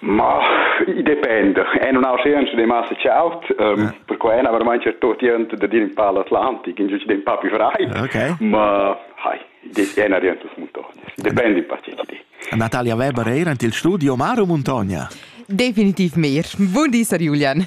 Ma i dependa. È nun ha scienza de massa chaut, ehm perquai na vermain cer tot jent da dir in pa l'Atlantic, in giugider in pa più freit. Okay. Ma hai, des è na jent las muntognas. Depende un po' che di. Natalia Weber eir ant il studio Maro Montogna. Definitiv meir. Buon di, Sar Julian.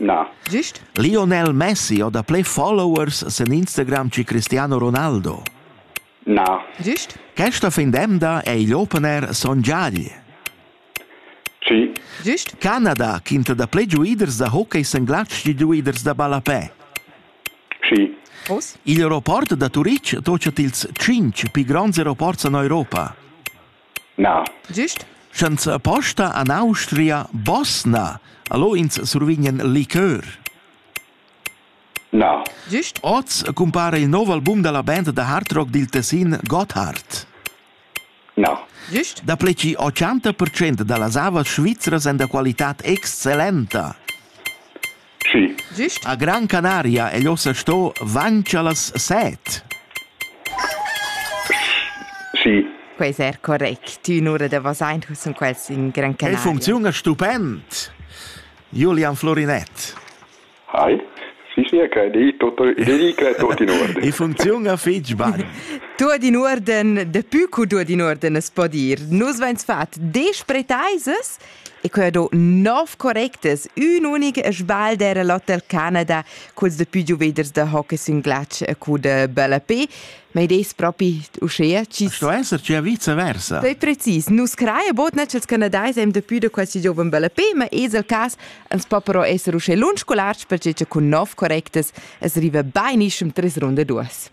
Na. Gist? Lionel Messi ho dapplè followers sen Instagram che Cristiano Ronaldo. Na. Gist? Questa fin d'emda è igl opener Son Giagli. Ci. Gist? Canada, quinta da ple giuiders da hockey sen glatsch di giuiders da ballapè. Ci. Prost? Il aeroport da Turitg tocia tils 5 pi gronds aeroports en Europa. Na. Gist? Senza posta en Austria Bosna. Allo ins survignan liqueur? Na. Gist? Oz cumpara il nov album dalla band da hard rock dil Tessin Gotthard. Na. Gist? Dapli che 80% dallas avas svizras èn da qualitad excellenta. Schi. Gist. A Gran Canaria egl ossa sto vaincher las set. Schi. Quei ser correct. Tü nura da Vasain sun quels in Gran Canaria. Il funcziun è stupend. Julian Florinett. Hi. Si sia che di tutto di che tutti in ordine. I funziona fitch bang. Tuot in orden, de pü cu tuot in orden es po dir. Nus vains fat desch pretaisas E quei do nov correctas, ün unic sbal era l'Hotel Canada culs de più giuveders da hockey sün glatsch e cu de bella pe, ma id es propi uschea chi Sto esser gia vice versa. Pei precis, nus craia botna ch'els canadais hem de più de quasi gioven bella pe, ma es el cas ans po però esser uschè lunsch scolarts perche cha cun nov correctas es riva bainischem tres runda duas.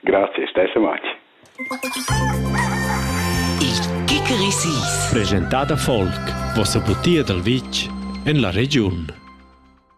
Grazie, stesso match. Il Kikerisis. Presentada Volk, vossa butia dal vitg en la regiun.